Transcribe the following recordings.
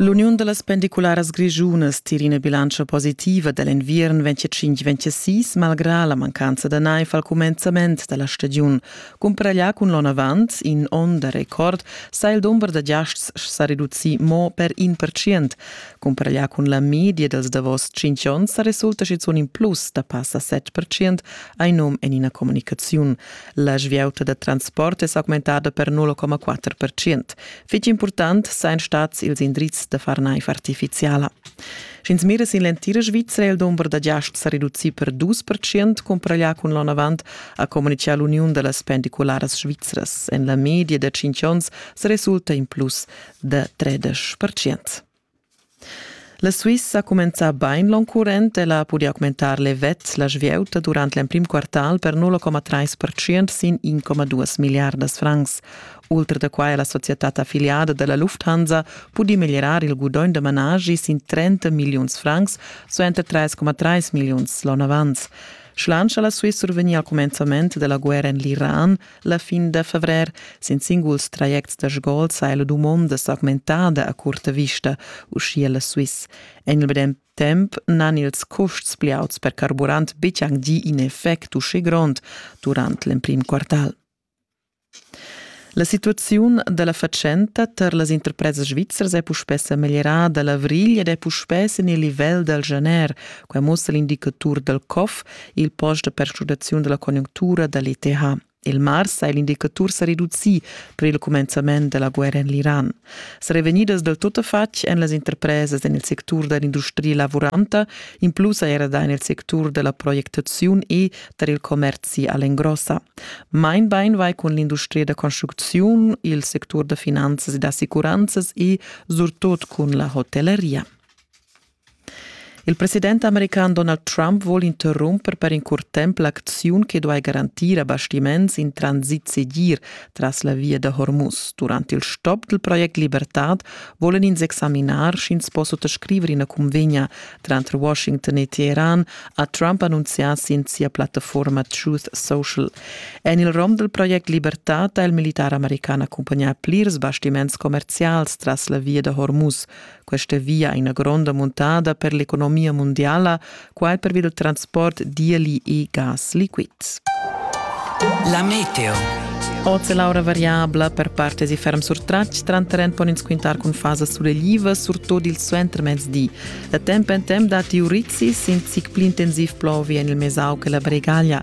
L'uniun da las pendicularas grischunas tira ina bilantscha positiva da l'enviern 25-26 malgrà la mancanza da naiv al cumenzament da la stagiun. Cumparaglià cun l'onn avant, in onn da record, sa il dumber da giasts sa reducir mo per in percent. Cumparaglià cun la media dals davos tschintg onns sa resulta schizunt in plus da passa set percent hai num en ina communicaziun. La svieuta da transport è s'augmentada per 0,4%. Fitg important sain stats ils indrizs da far naiv artificiala. Sch'ins mira sin l'entira Svizra, è il dumber da giasts sa reducì per 2% cumpraglià cun l'onn avant, ha communitgà l'Uniun da las pendicularas svizras. En la media da 5 onns sa resulta in plus da 13%. La Suissa ha cumenzà bain l'onn current, ella ha pudì augmentar levets la svieuta durant l'emprim quartal per 0,3% sin 1,2 milliardas francs. Ultra da quai ha la societad affiliada da la Lufthansa pudì meglierar il gudogn da managi sin 30 milliuns francs, suenter 3,3 milliuns l'onn avant. Schlansch ha la Swiss survegnì al cumenzament da la guerra en l'Iran La fin da fevrer sin singuls trajects da sgols ha la dumonda s'augmentada a curta vista, uschia la Swiss. En il medem temp n'han ils custs pli auts per carburant betg anc gì in effect uschè grond durant l'emprim quartal. La situaziun da la fatschenta tar las interpresas svizzers è puspè sa meglierada l'avrigl ed è puspè sin il livel dal janer. Quai mussa l'indicatur dal COF il post da perschnudaziun della conjunctura dall'ETH. Il mars ha l'indicatur sa reducì per il cumenzament della guerra en l'Iran. Sarebbero venidas del tuttafatg en las interpresas en il sectur dell'industria lavoranta, in plus era da nel sectur della proiectazione e tar il commerci all'engrossa. Mein Bein vai con l'industria da construzione, il sector da finanzas e d'assicuranzas e surtot con la hotelleria. Il president american Donald Trump vul interrumper per in curt temp l'acziun che duai garantir a bastiments in transit segir tras la via da Hormuz. Durant il stop dal project Libertad volen ins examinar sch'ins po suttascriver ina cunvegna tranter Washington e Teheran, ha Trump annunzià sin sia plattaforma Truth Social. En il rom dal project Libertad ha il militar american accumpagnà plirs bastiments commerzials tras la via da Hormuz. Questa via è ina gronda muntada per l'economia mondiala, quai pervi dal transport dieli e gas liquids. La meteo. Oz è l'aura variabla per parte di ferm surtratg, tranterent pon ins quintar cun fasas suleglivas, surtut il suentermezdi. Da temp en temp datti urizis, in zic pli intensiv plovi en il mesau che la Bregaglia.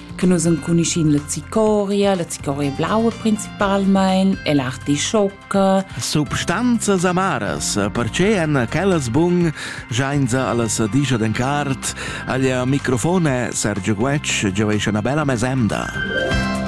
che nus enconuschin la zicoria, la zicoria blaua principalmein e l'artischocca. Substanzas amaras, perche en quellas bun jainza allas digia den cart, agl microfone Sergio Guetsch gioesce una bella mesemda.